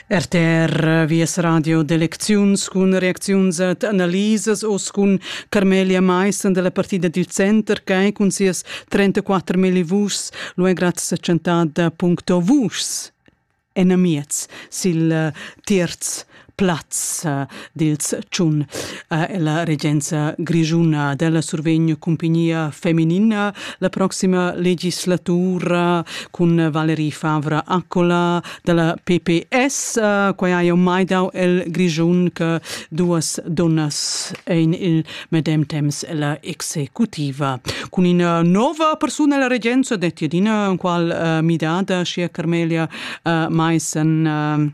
RTR Vies radio d'elecziuns cun reacziuns ed analisas oz cun Carmelia Maissen della partida dil Center che cun sias 34.000 vuschs lu è grazie chantada.vuschs enamiez sil eh, terz plaz eh, dils tschun. Eh, la regenza grigiuna della survegno compagnia feminina la prossima legislatura con Valerie Favra Accola della PPS, eh, quai ha mai dau el grigiun che duas donnas in il medem temps la executiva. Con una nova persona la regenza detti adina qual midada sia Carmelia Maisen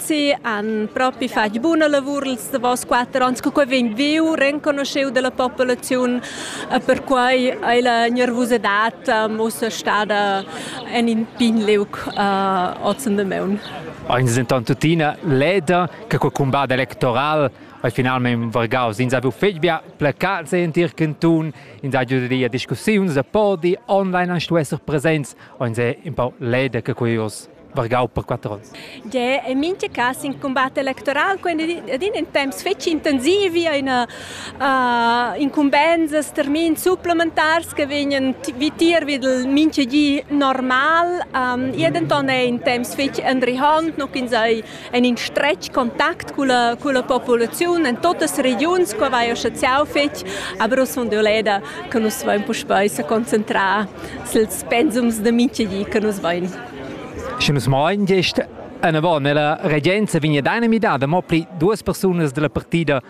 Sì, han propi fatg buna lavur ils davos quatter ans co quai vegn viu, renconuscheu dalla populaziun. Perquai ei la nervusadad ussa stada en in pign liug oz in damaun. Eins denton tuttina leda che quei cumbat electoral ei finalmein vargaus. Ins ha fetg bia placats entir cantun, ins ha giu da discussiuns da podi, online han stuess esser presents, eins è un pau leda che quei oz. vargau per quatter onns. De, in mincha cas in combatt electoral quando adina in temps fetg intensiv vi eine uh, incumbensas termin supplementars che vegnan vitier vid il mincha di normal um, e denton è in temps fetg enrihant noch in sei en in stretg kontakt con la, con la popolazione in totes regions qua vai associau fetg aber us von Doleda che nus vain puspei se concentrare suls pensums de mincha di che nus vain Sche nus mein gest anavon ella regenza vegn ad einer midada mo pli duas persunas dalla partida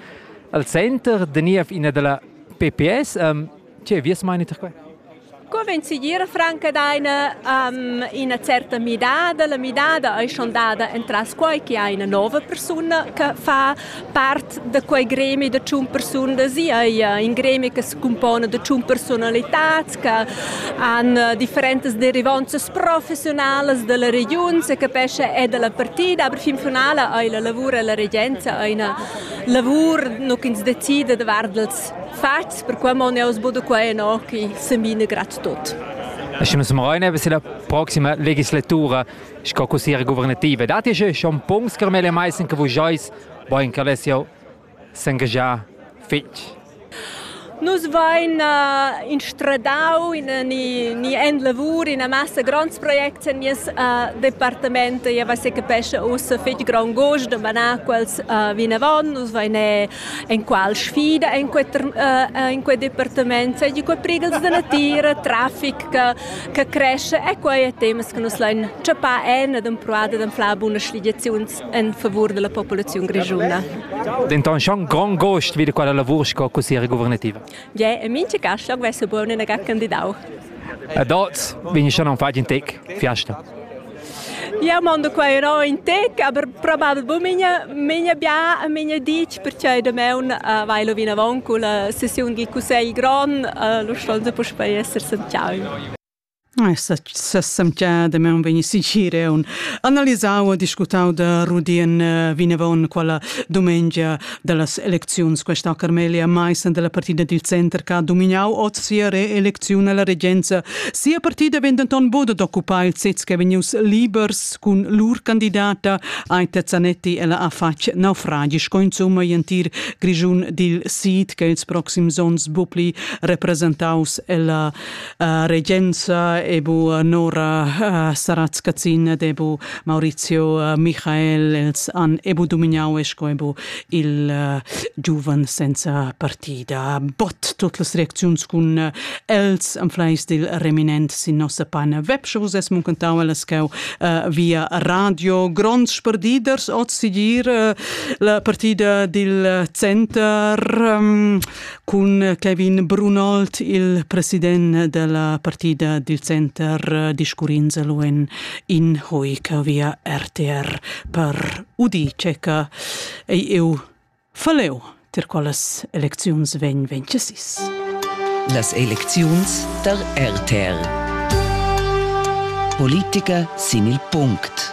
al center de niev ina dalla PPS. Um, tge vies meini per quei? Convencidir franca d'ina um, ina certa midada. La midada è schon dada entras quai che ha una nova persona che fa Part da quei gremi da tschun persunas ei in gremi che secumpona da tschun personalitads che han eh, differentas derivanzas professionalas dalla regiun, se capesce è dalla partida, aber fin finale ei la lavur e la regenza eine lavur nu ins decide davart els fats, per cui mon eu sbudo qua e no che se mine grad tot. Stimme zum Rhein, bis in der proximen Legislatura Sco cussiera guvernativa datti sche schon punts che mele mai sin che vus jois, boin che less jau s'engagiar fitg. Nus vain uh, instradau in, ni, ni en lavur in massa grands projects en nies uh, departament. E va se capesce ussa fitg grand gust de manar quels uh, vinavon. Nus vain en qual sfida en quel uh, uh, in quel departament. Sai di quei prigels de natira, traffic che che cresce è quei e temas che nus lain chappar en ed empruada d'anflar bunas sligiaziuns en favur della popolazione grigiuna. Denton schon grand gost wieder quella lavur sco cussiere guvernativa. Ja, in minche caschlag vesse buon in agar candidau. A dort vegni schon un fatg in tec fiasta. Jeu mondo qua ero in tec, aber probabel bu migna migna bia e migna ditg perche da meun uh, vai lo vinavon culla sessiun gi cussegl gron, uh, lo stonze puspei esser sentiau. Sessemtia de me un veni sicire un analisau e discutau da Rudi en eh, vinevon quella domengia dallas elecziuns questa Carmelia Maissen della partida dil center che ha dominau oz sia reelecziun alla regenza. Sia partida vegn denton buca d'occupar il sez che vegnius libers cun lur candidata Aita Zanetti ella ha fatg naufragi sco insumma entir Grischun dil sid che ils proxims onns bu pli representaus ella Uh, regenza ebu uh, Nora uh, Sarazzkazzina debu Maurizio uh, Michael els an ebu dominau esco ebu il uh, giuvan senza partida. Bot tot las reacziuns cun uh, els am fleis dil reminent sin nossa pana webshows es muncentau las cau uh, via radio gronds sperdiders oz sigir uh, la partida dil center um, Cun Kevin Brunold, il president della partida di Center discurrins luen in hoica via RTR per udi ceca ei eu faleu tir qualas elecziuns vegn vencesis. Las elecziuns der RTR Politiker sin il Punkt.